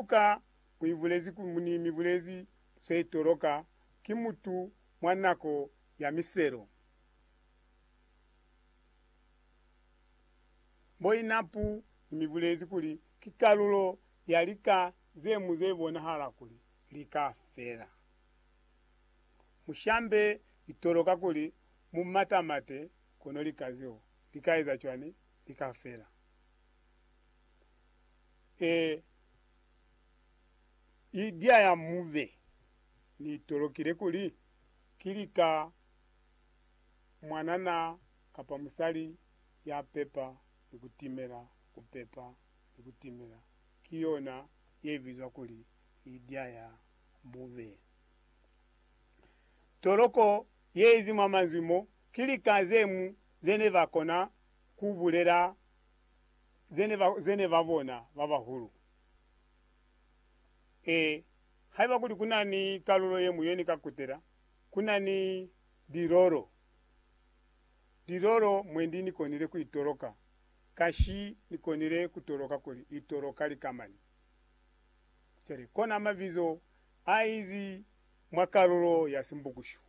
Luka u ibulezi kuli muni mibulezi ze toloka ki mutu mwa nako ya miselo? Mboinapu ni mibulezi kuli ki kalulo ya lika ze mu ze bonahala kuli li ka fela. Mushambe itoloka kuli mu matamate kono lika zeo li ka eza cwani? Li ka fela. Ee, Lydia ya mube ni tolokile kuli ki lika mwanana kapa musali ya pepa ni ku timela. Ku pepa ni ku timela ki yona ye bizwa kuli Lydia ya mube. Toloko ye izi mwa manzwi mo ki lika ze mu ze ne ba kona ku bulela ze ne ba, ze ne ba bona ba bahulu. Ee, haiba kuli ku na ni kalulo ye ñwi ye ni ka kutela, ku na ni lilolo, lilolo mwendi ni konile ku itoloka, ka shi ni konile ku toloka kuli itoloka lika mani. Cwale, kona mabizo a izi mwa kalulo ya Simbukushu.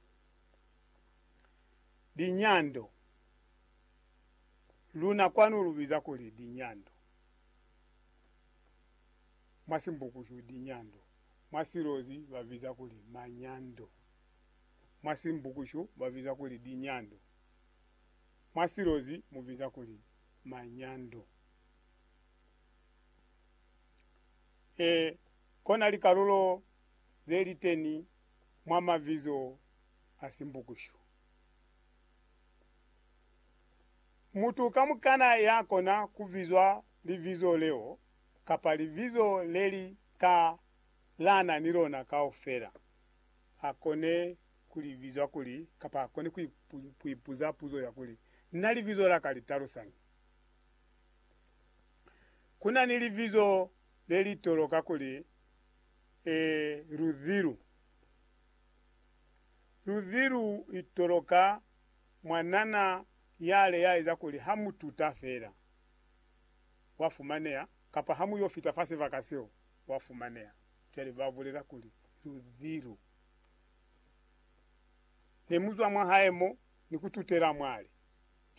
Linyando. Luna kwanu lu biza kuli dinyando. Mwa Simbukushu, dinyando. Mwa Silozi ba biza kuli manyando. Mwa Simbukushu ba biza kuli dinyando. Mwa Silozi mu biza kuli manyando. E, kona likalulo ze liteni mwa mabizo a Simbukushu. Mutu kamukana ya kona ku bizwa libizo leo kapa libizo le li ka lana ni lona kaufela, a kone ku li bizwa kuli, kapa a kone ku ipuza puzo ya kuli, Na libizo la ka li talusañi? Ku na ni libizo le li toloka kuli, Ruzilu. Luzi lu itoloka mwa nana yale ya eza kuli ha mu tuta fela, wa fumaneha, kapa ha mu yo fita fa sibaka seo, wa fumaneha. Cwale ba bulela kuli, Luzi lu ne mu zwa mwa hae mo, ni ku tutela mwale.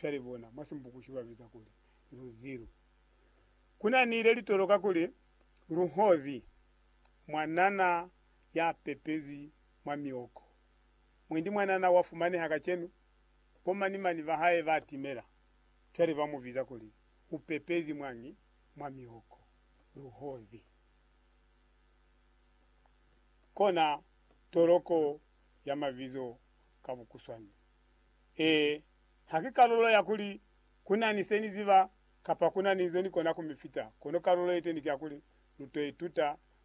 Cwale bona, mwa Simbukushi ba biza kuli, Luzi lu. Ku na ni le li toloka kuli, Luhozi, mwa nana ya pepezwi mwa mioko. Mwendi mwanana wa fumaneha kacenu, bo mani-mani ba hae ba timela. Cwale ba mu biza kuli, U pepezi mwañi mwa mioko? Luhozi. Kona toloko ya mabizo ka bukuswani. Ee, ha ki kalulo ya kuli, Ku na ni se ni ziba, kapa, Ku na ni nzo ni kona ku mi fita, kono kalulo ye teni ki ya kuli, Lu to ituta